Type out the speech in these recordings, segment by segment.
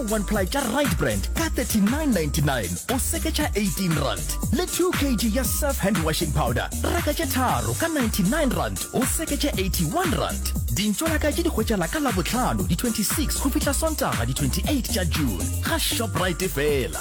one ply tša right brand ka 3999 o seketša 18 rand le 2 kg ya surf hand washing powder reka tše tharo ka 99 rand o seketša 81 rand dintšo la ka tše di hwetšala ka labotlhano di-26 go fihla sontaga di-28 tša june ga shoprite fela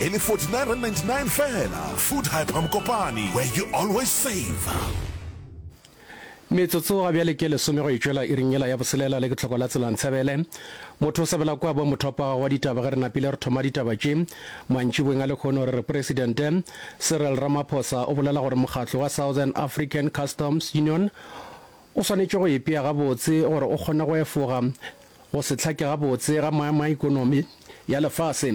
E le R49.99 feela. Food Hyper Mokopane, where you always save. Metsotso ga bjale ke lesome go e tšwela iring yela ya boselela le ke tlhoko la tsela ntsebele motho o sabela kwa bo mothopaga wa ditaba ge re napile re thoma ditaba tše mantšibweng a lekgono re re presidente Cyril Ramaphosa o bolela gore mokgatlo wa Southern African Customs Union o swanetše go ipea gabotse gore o kgone go efoga go se hlake gabotse ga maemo a ikonomi ya lefase.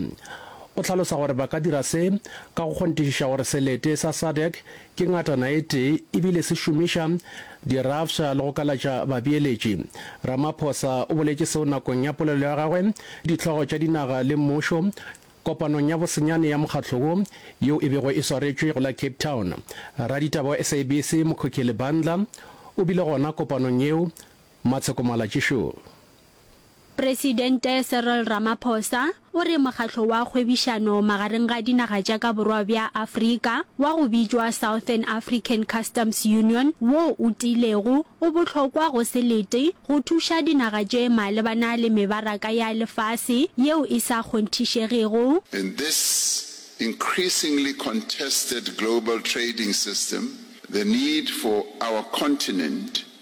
O hlalosa gore ba ka dira se ka go kgonthišiša gore selete sa SADC ke ngatana e tee ebile se šomiša dirafša le go kalatša babeeletši. Ramaphosa o boletše seo nakong ya polelo ya gagwe dihlogo tša dinaga le mmušo kopanong ya bosenyane ya mokgatlo wo yeo e bego e swaretšwe go la Cape Town. Raditaba wa SABC Mokhokheli Bandla o bile gona kopanong yeo Matsheko Malatji Show. Presidente Cyril Ramaphosa o re mokgatlo wa kgwebišano magareng ga dinaga tša ka borwa bja Afrika wa go bitšwa Southern African Customs Union wo o tiilego o bohlokwa go se lete go thuša dinaga tše malebana le mebaraka ya lefase yeo e sa kgonthišegego. In this increasingly contested global trading system, the need for our continent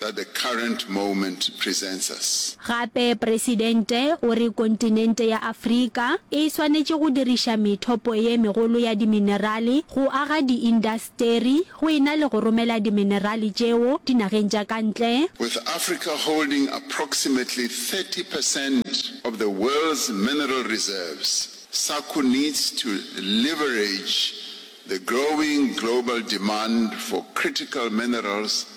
that the current moment presents us. Gape Presidente o re kontinente ya Afrika e swanetše go diriša methopo ye megolo ya diminerale go aga diindasteri go e na le go romela diminerale tšeo dinageng tša ka ntle. With Africa holding approximately thirty percent of the world's mineral reserves, SACU needs to leverage the growing global demand for critical minerals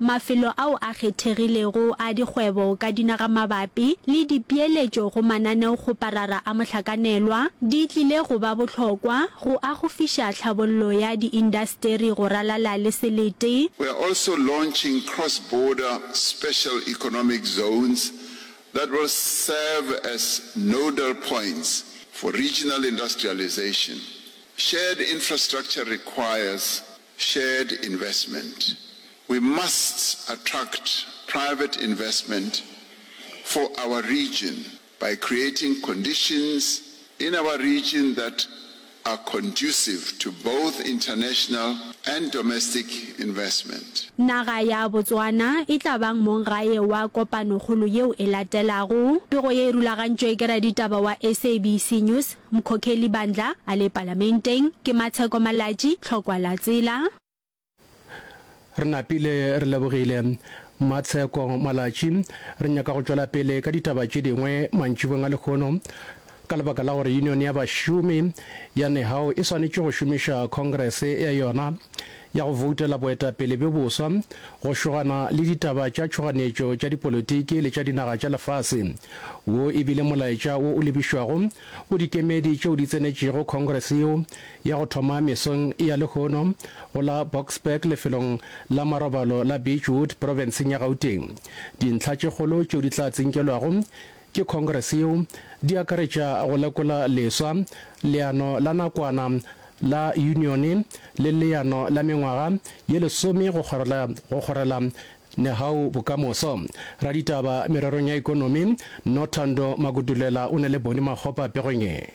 mafelo ao a kgethegilego a dikgwebo ka dinagamabapi le dipeeletšo go mananeokgoparara a mohlakanelwa di tlile go ba bohlokwa go agofiša tlhabollo ya diindasteri go ralala le selete. We are also launching cross-border special economic zones that will serve as nodal points for regional industrialisation. Shared infrastructure requires shared investment, we must attract private investment for our region by creating conditions in our region that are conducive to both international and domestic investment. Naga ya Botswana e tla bang mong gae wa kopanokgolo yeo e latelago. Pego ye e rulagantšwe ke raditaba wa SABC News. Mkhokheli bandla a le palamenteng ke Matsheko Malatji Tlhokwa la tsela. Re napile re lebogile Matsheko Malatji. Re nyaka go tšwela pele ka ditaba tše dingwe mantšibong a lekgono ka lebaka la gore Union ya Bašomi ya Nehao e swanetše go šomiša Congress ya yona ya go voutela boetapele bjo boswa, go šogana le ditaba tša tšhoganetšo tša dipolotiki le tša dinaga tša lefase. Wo e bile molaetša wo o lebišwago go dikemedi tšeo di tsenetšego Congress yeo ya go thoma mesong ya lehono go la Boksburg lefelong la marobalo la Beechwood profenseng ya Gauteng. Dintlha tše kgolo tšeo di tla tsinkelwago Ke Congress yeo di akaretša go lekola leswa leano la nakwana la Unione le leano la mengwaga ye lesome go kgorela go kgorela Nehau bokamoso. Raditaba mererong ya ekonomi Nothando Makutulela o ne le Boni Makgopa pegong e.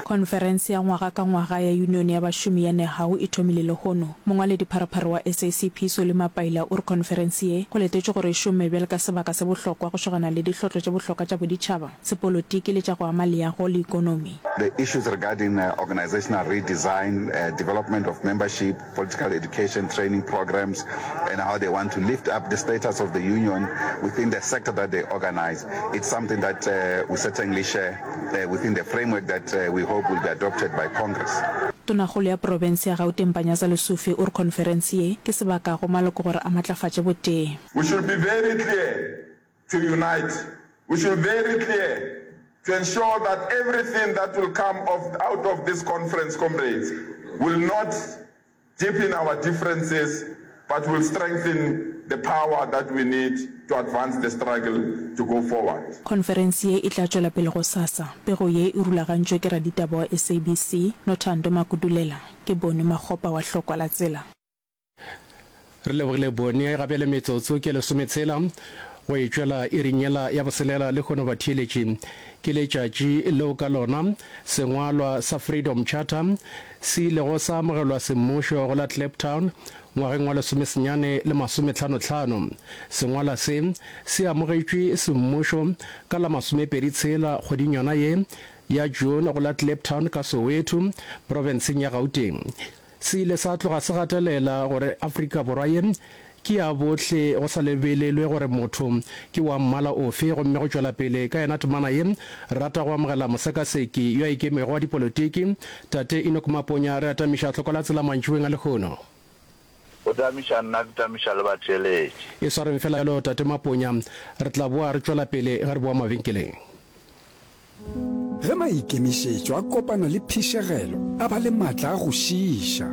Khonferense ya ngwaga ka ngwaga ya Yunione ya Bašomi ya Nehawu e thomile lehono. Mongwaledipharopharo wa SACP, Solly Mapaila, o re khonferense ye go letetšwe gore e šomme bjale ka sebaka se bohlokwa go šogana le dihlotlo tše bohlokwa tša boditšhaba, sepolotiki le tša go ama leago le ikonomi. The issues regarding organizational redesign, development of membership, political education training programs and how they want to lift up the status of the union within the sector that they organize. It's something that uh, we certainly share uh, within the framework that uh, we hope will be adopted by Congress. Tonakgolo ya Profense ya Gauteng Panyaza Lesufi o re khonferense ye ke sebaka go maloko gore a matlafatše botee. We should be very clear to unite we should very clear to ensure that everything that will come of out of this conference comrades will not deepen our differences but will strengthen the power that we need to advance the struggle to go forward. Khonferense ye e tla tšwela pele gosasa. Pego ye e rulagantšwe ke raditaba wa SABC, Nothando Makudulela. Ke Bony Makgopa wa Hlokwa la Tsela. Re lebogile bone ga bjale metsotso ke lesometshela go e tšwela iring yela ya boselela le kgono batheeletši. Ke letšatši leo ka lona sengwalwa sa Freedom Charter se ilego sa amogelwa semmušo go la Kliptown ngwageng wa lesomesenyane le masometlhano-tlhano. Sengwala se se amogetšwe semmušo ka la masomepedi tshela kgweding yona ye ya June go la Kliptown ka Soweto, profenseng ya Gauteng. Se ile sa tloga se gatelela gore Afrika Borwa ye ke ya bohle go sa lebelelwe gore motho ke wa mmala ofe gomme go tšwela pele ka yena temana ye re rata go amogela mosekaseki yo a ikemego wa dipolotiki Tate Enock Maponya re atamiša tlhoko la tsela mantšiboeng a lehono. Go tamiša nna ke tamiša le batheeletši. E swareng fela bjalo Tate Maponya re tla boa re tšwela pele ge re boa mabenkeleng. Ge maikemišetšo a kopana le phišegelo a ba le matla a go šiiša.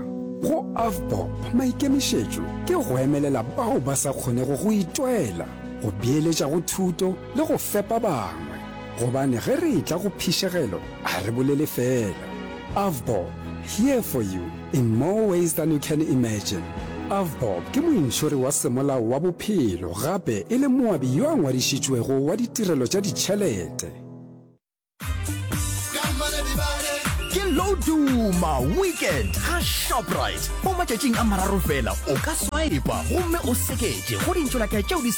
Go Avbob, maikemišetšo ke go emelela bao ba sa kgonego go itwela, go beeletša go thuto le go fepa bangwe. Gobane ge re etla go phišegelo, ga re bolele feela. Avbob, here for you in more ways than you can imagine. Avbob ke mointšhori wa semolao wa bophelo gape e le moabi yo a ngwadišitšwego wa ditirelo tša ditšhelete. Ke Loduma Weekend ga Shoprite. Mo matšatšing a mararo fela o ka swipa gomme o seketše go dintšolatša tšeo di sa